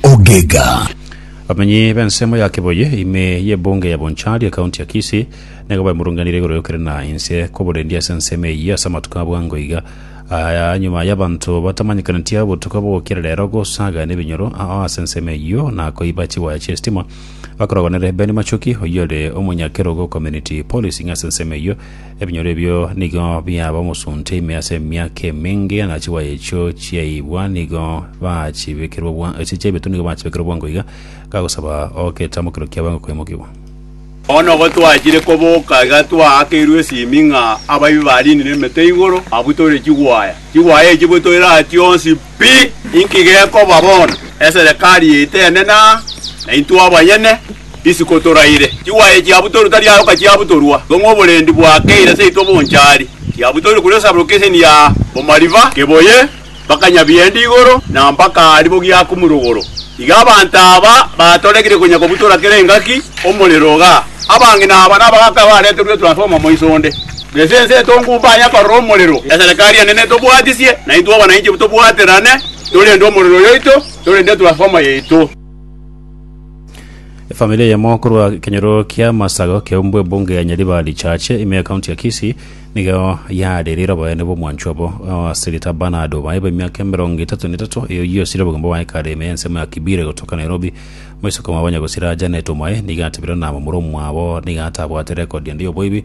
Ogega. Abamenyi b'ensemo ya Kiboye ime y'ebunge ya Bonchari ekaunti ya Kisii nigo baimurunganire igoro y'okere na inse kw'oborendi ase ensemo eyio ase amatuko abwango iga aya nyuma y'abanto batamanyekaneti obotuko bogokira rero gosaga nebinyoro ao ase ensemo eyio na koiba chiwaya chi'estima bakorogonere Ben Machoki oyore omonyakerogo community policing ase ensemo eyio Ebinyoro ebio nigo biaba omosunte ime ase emiaka emenge, na chiwayi echio chiaibwa nigo bachibekerwa bwa- echio chiaibetwe nigo bachibekerwa bwango iga, gagosaba ogetamokero kiabo enga koimokigwa. Bono gotwachire koboka iga twaakeirwe esimi ng'a abaibi bariinire emete igoro, abwo tore chigwaya. Chigwaya echi bwe toiratia onsi Pi! Inki gekoba bono? Eserekari yaito enene aa, na intwe abanyene isiko toraire. Chigwaye chiabutorwe tari ayoka chiabutorwa, ng'o ng'oborendi bwakeire seito bonchari? Chiabutorwe kuri osaburoke eseni ya omariba, keboye mpaka Nyabiende igoro, na mpaka aria bogiakumure igoro. Iga abanto aba batoregire konya kobutora kera engaki, omorero igaa. Abang'ina aba nabagaaka bareterwe transformer moiso onde. Gese ense etongu mbaye akorora omorero, eserekari enene etobwatisie, na intwe abananchi tobwaterane, torende omorero oyoito, torende transformer yaito. Efamiri eyemo korwa ekenyoro kia Masago keumbu ebunge ya Nyaribari Church ime ekaunti ya Kisii nigo yarerire oboyene bw'omwancho obo ase rita Bernard Obaye bw'emiaka emerongo etato na etato eyo oyosire obogima bwaye kare ime y'ensemo ya Kibire gotoka Nairobi. Moiseke mwabo nyagosira Janet Omaye nigo atebire na momura omwabo nigo atabwate rekodi ende y'oboibi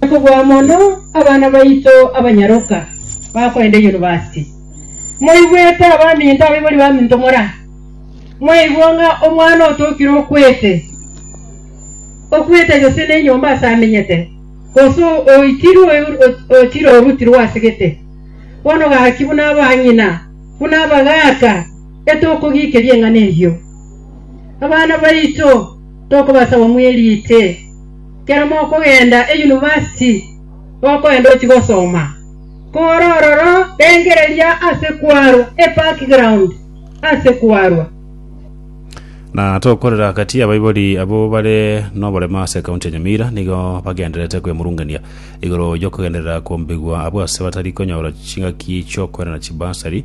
Nakobua mono abana baito abanyaroka bakoenda yunivasiti. Moigwete abaminto abaibori baminto mora? Mwaigwa ng'a omwana otokire okwete, okwete gose nenyomba aase amenyete, gose oitirwe ochire orutirwe ase gete. Bono gaki buna abang'ina, buna abagaaka, etokogikeria eng'ana eyio. Abana baito tokobasaba mwerite. Kera mokogenda eyunivasiti gokoenda ochie gosoma, kore ororo rengereria ase kwarwa ebackground ase kwarwa. Na tokorera agati y'abaibori abwo bare noborema ase ekaunti ya Nyamira nigo bagendererete kwemurungania igoro y'okogenderera kombigwa abwo ase batari konyora chingaki chi'okoirana chibasari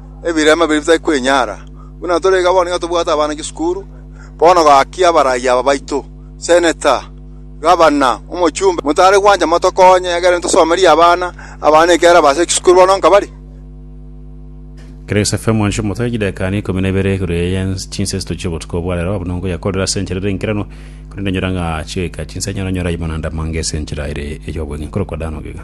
ebirema biria bitari kwenyara, buna tore iga bono nigo tobwate abana chisukuru, bono gaki abarai aba baito, seneta, gavana, omochumbe, motare gwancha motokonye egere tosomerie abana, abana ekiagera baase chisukuru bono nka bare. Grace FM mwancha omote chidakika ne ikomi na ibere igoro eye yense chinsesito chiobotuko obwa rero abwo nongo yakorire ase enchera ere enkeranu korende enyora ng'a chigoika chinsa enyara onyore aye bonanda amange ase enchera ere ey'obweng'e nkorokwa Dan Ogega.